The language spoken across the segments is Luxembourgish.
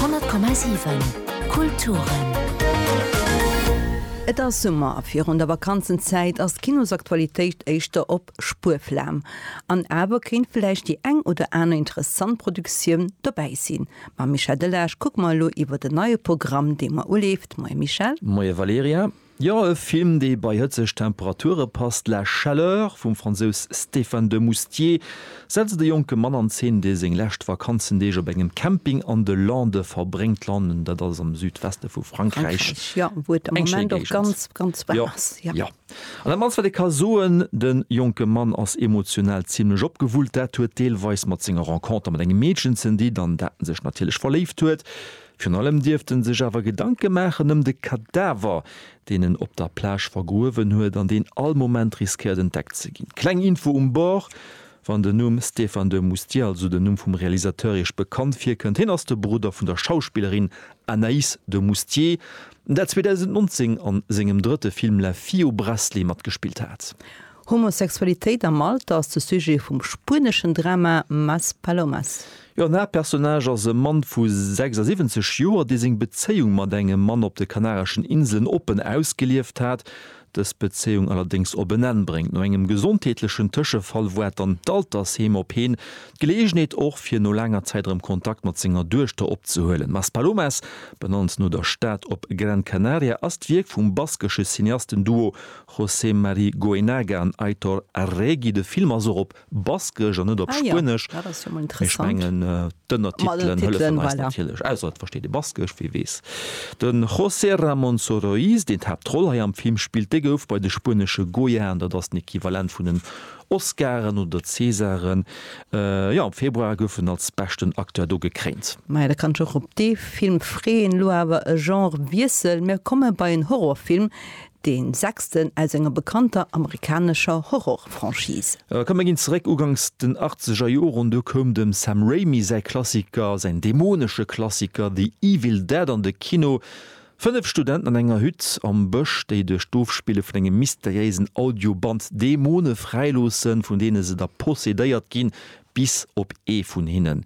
100,7 Kulturen. Et ass Summer a virun der Vakanzenzäit ass d'Kinosaktualitéit éischter op Spuerflam. An awer kéint vläicht déi eng oder aner interessant Produktioun dobäi sinn. Mam Michel Delage kucke mer elo iwwer den neie Programm, dee mer uleeft. Moie Michel. Moie Valerija. Jo, e Film, dee bei hëtzeg Temperature passt, La chaleur vum Fransous Stéphane de Moustier setzt e jonke Mann an Zeen, dee seng lescht Vakanzendeeg op engem Camping an de Lande verbréngt. Landen, dat ass am Südweste vu Frankräich. Frankräich, jo, wou et am Eng schéi Moment och Géigend. ganz, ganz waarm Jo, ass, jo. jo. An dat mannst, wat ee ka soen, de jonke Mann ass emotional zimlech opgewullt. Dat huet deelweis mat senger Renconter mat engem Meedchen ze dinn, an dat en sech natierlech verléift huet. Virun allem dierft en sech awer Gedanke maachen ëm de Kadaver, deen en op der Plage vergruewen huet an deen all Moment riskéiert entdeckt ze ginn. Kleng Info um Bord, Wann den Numm Stéphane de Moustier, also den Numm vum Realisateur, Iech bekannt virkënnt, hien ass de Brudder vun der Schauspillerin Anaïs de Moustier, dat 2019 a sengem drëtte Film La fille au bracelet matgespillt hat. Homosexualitéit am Alter ass de Sujet vum spueneschen Drama Más palomas. Den Haaptpersonnage ass e Mann vu 76 Joer, dee seng Bezéiung mat engem Mann op de Kanareschen Inselen oppen ausgelieft hat, dës Bezéiung allerdéngs op en Enn bréngt. No engem gesondheetlechen Tëschefall woart dann d'Altersheem op heen, d'Geleeënheet och, fir no laanger Zäit erëm Kontakt mat senger Duechter opzehuelen. Más palomas, benannt no der Stad op Gran Canaria, ass d'Wierk vum baskesche Cineasten-Duo José Mari Goenaga an Aitor Arregi. De Film ass och op Baskesch an net op Spuenesch. Mee ech mengen d'Ënnertitelen hëllefen eis natierlech. Ausser et versteet ee Baskesch, wee weess. De José Ramón Soroís, deen d'Haaptroll hei am Film spillt, dee gouf bei de spuenesche Goyaen, dat ass den Equivalent vun den Oscaren oder Césaren, jo am Februar gouf en als beschten Acteur do gekréint. Maja, da kann ech och op dee Film freeën. Elo awer e Genre-Wiessel, mir komme bei en Horrorfilm, Deen sechsten aus enger bekannter amerikanescher Horror-Franchise. Mä komm, mir ginn zeréck uganks den achtzeger Joren. Du koum dem Sam Raimi säi Klassiker, säin dämonesche Klassiker The Evil Dead an de Kino. Fënnef Studenten an enger Hütt am Bësch, déi duerch d'Ofspille vun engem mysteriéisen Audioband Dämone fräiloossen, vun deene se da possedéiert ginn. bis op ee vun hinnen.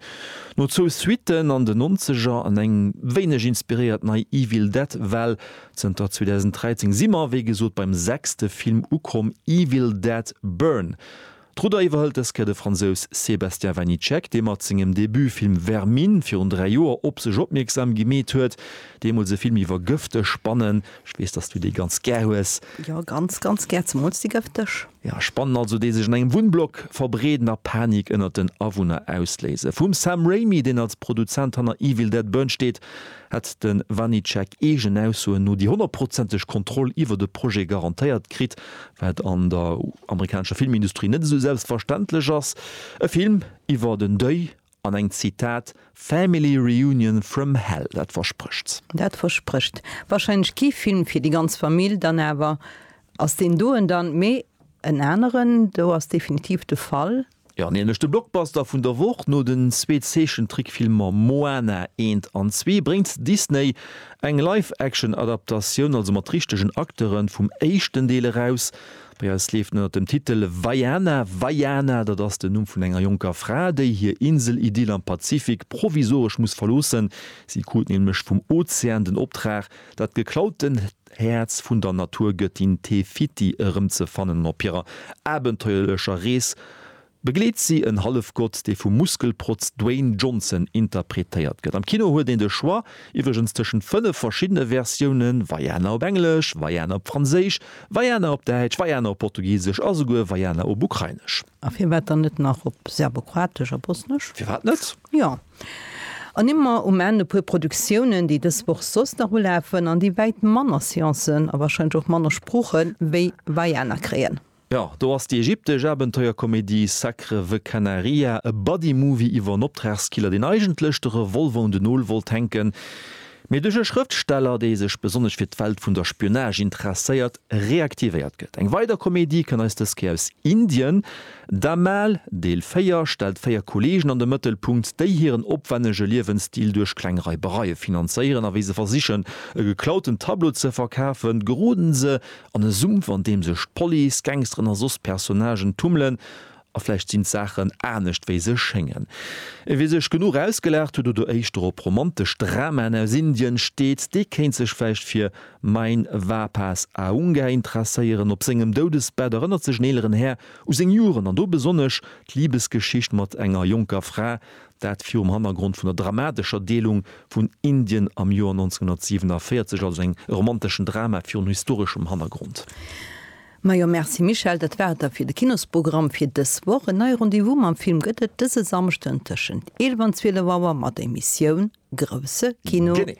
No zwou Suitten an den Nonzeger an eng wéineg inspiréiert nei Evil Dead Well. Zënter 2013 si mer wéi gesot beim sechste Film ukomm, Evil Dead Burn. D'Rudder iwwerhëlt dës Kéier de Fransous Sébastien Vanitschek, dee mat sengem Debutfilm Vermine virun dräi Joer op sech opmierksam gemeet huet. Deemools e Film iwwer gëfteg Spannen. Ech weess, dass du dee ganz gär hues. Jo, ganz, ganz gär, zemools déi gëfteg. Ja, Spannen also, déi sech an engem Wunnblock verbreeden a Panik ënnert den Awunner ausléisen. Vum Sam Raimi, deen als Produzent hanner Evil Dead Burn steet, hätt de Vanecek eegen Aussoen no déi honnertprozenteg Kontroll iwwert e Projet garantéiert kritt, wat an der amerikanescher Filmindustrie net esou selbstverständlech ass. E Film iwwert en Deuil An eng, Zitat, Family reunion from hell, dat versprécht. Dat versprécht warscheinlech kee Film fir déi ganz Famill. Dann awer ass deen do en dann, mee en aneren do ass definitiv de Fall. Jo, nämlech de Blockbuster vun der Woch. No den zwee Zeechentrickfilmer Moana eent an zwee bréngt Disney eng Live-Action-Adaptatioun, also mat richtegen Acteuren, vum éischten Deel eraus. Bei eis leeft en ënner dem Titel Vaiana. Vaiana, dat ass den Numm vun enger jonker Fra, déi hir Insel-Idyll am Pazifik provisoresch muss verloossen. Si krut nämlech vum Ozean den Optrag, dat geklauten Häerz vun der Naturgëttin Te Fiti erëmzefannen an op hirer abenteuerlecher Rees Begleet si en Hallefgott, dee vum Muskelprotz Dwayne Johnson interpretéiert gëtt. Am Kino huet een de Choix iwwregens tëschent fënnef verschiddene Versiounen, Vaiana op Englesch, Vaiana op Franséisch, Vaiana op Däitsch, Vaiana op Portugisesch a souguer Vaiana op Ukrainesch. A firwat dann net nach op Serbokroatesch a Bosnesch? Firwat net? Jo. An ëmmer um Enn e puer Produktiounen, déi dës Woch soss nach ulafen an déi wäit manner Seancen a warscheinlech och manner Sproochen wéi Vaiana kréien. Jo, do ass déi ägyptesch Abenteuerkomedie Sacre the Canaria, e Buddy-Movie iwwer en Optragskiller, deen eigentlech de Revolver un den Nol wollt hänken, mee duerch e Schrëftsteller, dee sech besonnesch fir d'Welt vun der Spionage interesséiert, reaktivéiert gëtt. Eng weider Komedie kënn eis dës Kéier aus Indien. Dhamaal, Deel 4, stellt véier Kolleegen an de Mëttelpunkt, déi hiren opwännege Liewensstil duerch kleng Reibereie finanzéieren a wéi se versichen, e geklauten Tableau ze verkafen, geroden se An e Sumpf, an deem sech d'Police, d'Gangsteren a soss Personnagen tummelen. A vläicht sinn d'Saachen anescht, wéi se schéngen. E wie sech genuch ausgelaacht huet oder éischter op romantesch Dramaen aus Indien steet, dee kéint sech vläicht fir Mein Vapas Aunga interesséieren. Op sengem Doudesbett erënnert sech en eeleren Här u seng Joren, an do besonnesch d'Libesgeschicht mat enger jonker Fra, Dat virum Hannergrond vun der dramatescher Deelung vun Indien am Joer 1947, also eng romanteschen Drama virun historeschem Hannergrond. Majo merci Michèle, dat war et da fir de Kinosprogramm fir dës Woch. En neie Rendez-vous mam Film gëtt et dëse Samschden tëschent 11 an 12 Auer mat der Emissioun Grousse Kino. Genee.